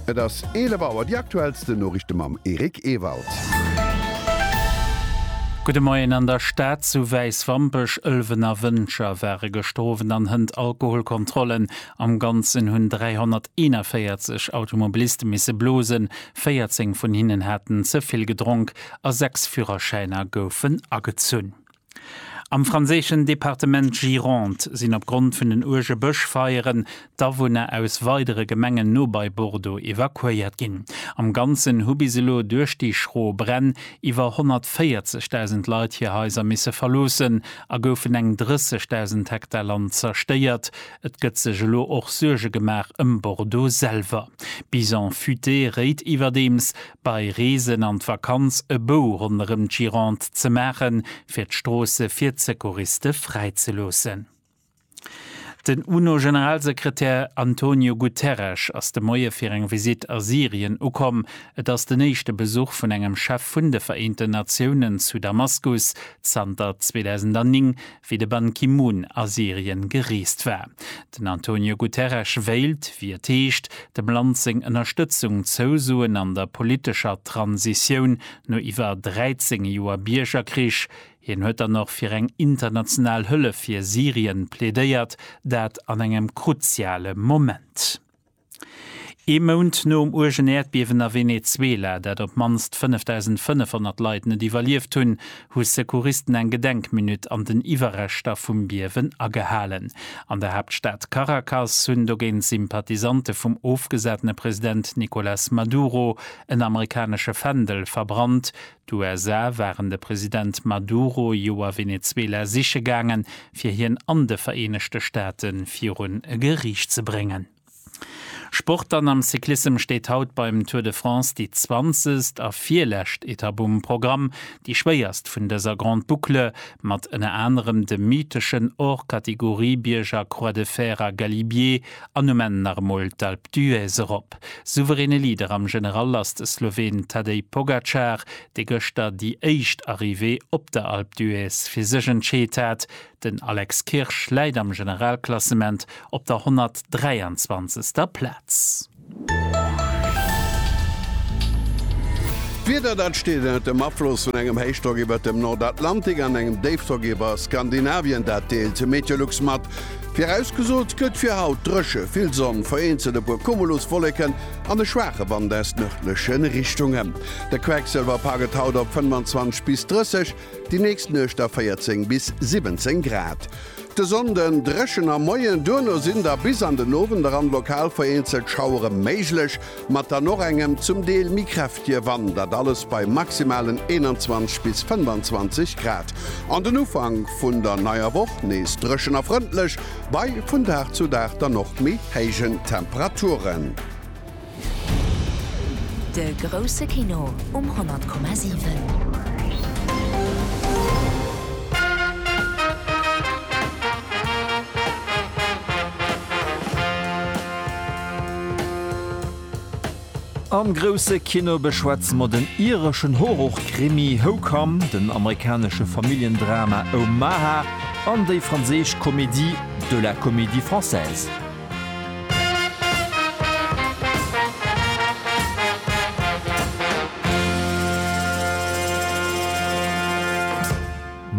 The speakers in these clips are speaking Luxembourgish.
Et ass 11 Auer, déi aktuellsten Noriichte mam Eric Ewald. Gudde Moien, An der Stad zu Wäiswampech, Ëlwen a Wëncher ware gëschter Owend an Hënt Alkoholkontrollen. Am Ganzen hunn 341 Automobiliste misse blosen, 14 vun hinnen haten ze vill gedronk a 6 Fürerschäiner goufen agezunn. Am franséischen Departement Gironde sinn opgrond vun den uerge Bëschfeieren d'Awunner aus weidere Gemengen no bei Bordeaux evakuéiert ginn. Am Ganzen hu bis elo duerch déi schro Bränn iwwer 140.000 Leit hir Haiser misse verloossen a goufen eng 30.000 Hektar Land zerstéiert. Et gëtt sech elo och Suerge gemaach ëm Bordeaux selwer. D'Bison Futé réit iwwerdeems, Bei Reesen an d'Vakanz e Bou ronderëm d'Gironde ze maachen, fir d'Stroosse fir d'Secouriste fräi ze loossen. Den UNO-Generalsekretär Antonio Guterres ass de Moie fir eng Visitt a Syrien ukomm. Et ass den éischte Besuch vun engem Chef vun de Vereenten Natiounen zu Damaskus zanter 2009, wéi de Ban Ki-moon a Syrien gereest war. Den Antonio Guterres wéilt, wéi et heescht, dem Land seng Ënnerstëtzung zousoen an der politescher Transitioun no iwwer 13 Joer Biergerkrich. Hien huet dann och fir eng international Hëllef fir Syrien plädéiert, dat an engem kruziale Moment. Ee Mount nom uergen Äerdbiewen a Venezuela, dat op d'mannst 5.500 Leit net iwwerlieft hunn, hu Secouristen eng Gedenkminutt an den Iwwerreschter vum Biewen agehalen. An der Haaptstad Caracas hunn dogéint Sympathisante vum ofgesatene President Nicolas Maduro en amerikanesche Fändel verbrannt, D'USA waren de President Maduro Joer Venezuela siche gaangen, fir hien an de Vereenegte Staate virun e Geriicht ze bréngen. Sport Dann am Cyclissem steet haut beim Tour de France déi zwanzegst a virlescht Etapp um Programm, déi schwéierst vun dëser Grande Boucle, mat ënner anerem dem mytheschen Hors-Catégorie-Bierger Croix de Fer a Galibier. An um Enn nach emol d'Alpe d'Huez erop. Souveräne Leader am General ass de Sloween Tadej Pogacar, dee gëschter déi éischt Arrivée op der Alpe d'Huez fir sech entscheet hat. Den Alex Kirsch läit am Generalklassement op der 123. Plaz. D'Wieder, dat steet ënnert dem Afloss vun engem Héichdrock iwwert dem Nordatlantik an engem Déifdrock iwwer Skandinavien, dat deelt Meteolux mat. Virausgesot gëtt fir haut, Dréche, vill Sonn, vereenzelt e puer Cumuluswolleken an e schwaache Wand aus nërdleche Richtungen. De Quecksëlwerpa gëtt haut op 25 bis 30. Déi nächst Nuecht da 14 bis 17 Grad. De Sonnden dréchen am Moien, duerno sinn da bis an den Owend eran lokal vereenzelt Schauere méiglech, mat dann och engem zum Deel méi kräftige Wand, dat alles bei maximalen 21 bis 25 Grad. An den Ufank vun der neier Woch nees dréchen a frëndlech, bei vun Dag zu Dag dann och méi héijen Temperaturen. De grousse Kino um 100,7. Am grousse Kino beschwätze mer den ireschen Horrorkrimi How Come, den amerikanesche Familljendrama Omaha an déi franséisch Comédie de la Comédie Française.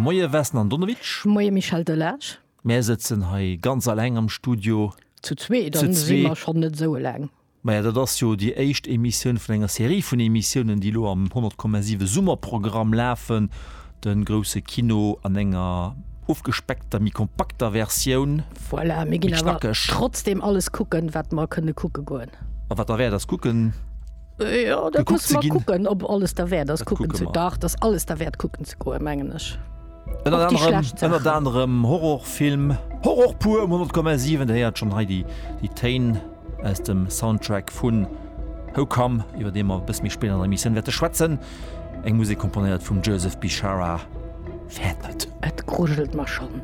Moie Vesna Andonovic. Moie Michel Delage. Mär sëtzen hei ganz alleng am Studio. Zu zwee, dann si mer schonn net esou eleng. Maja, dat ass jo déi éischt Emissioun vun enger Serie vun Emissiounen, déi elo am 100,7 Summerprogramm lafen. De grousse Kino an enger ofgespeckter, méi kompakter Versioun. Voilà, mir ginn awer trotzdeem alles kucken, wat mer kënne kucke goen. A wat derwäert ass, kucken. Jo, dat musse mer kucken, ob alles derwäert ass, kucken ze. Dach, dat ass alles derwäert, kucken ze goen, mengen ech. Ënnert anerem, ënnert anerem Horrorfilm, Horror pur um 100,7. Der héiert schonn hei déi Téin. aus dem Soundtrack vun How Come, iwwer dee mer e bësse méi spéit an der Emissioun wäerte schwätzen, eng Musek komponéiert vum Joseph Bishara, Fäert net. Et grujelt mer schonn.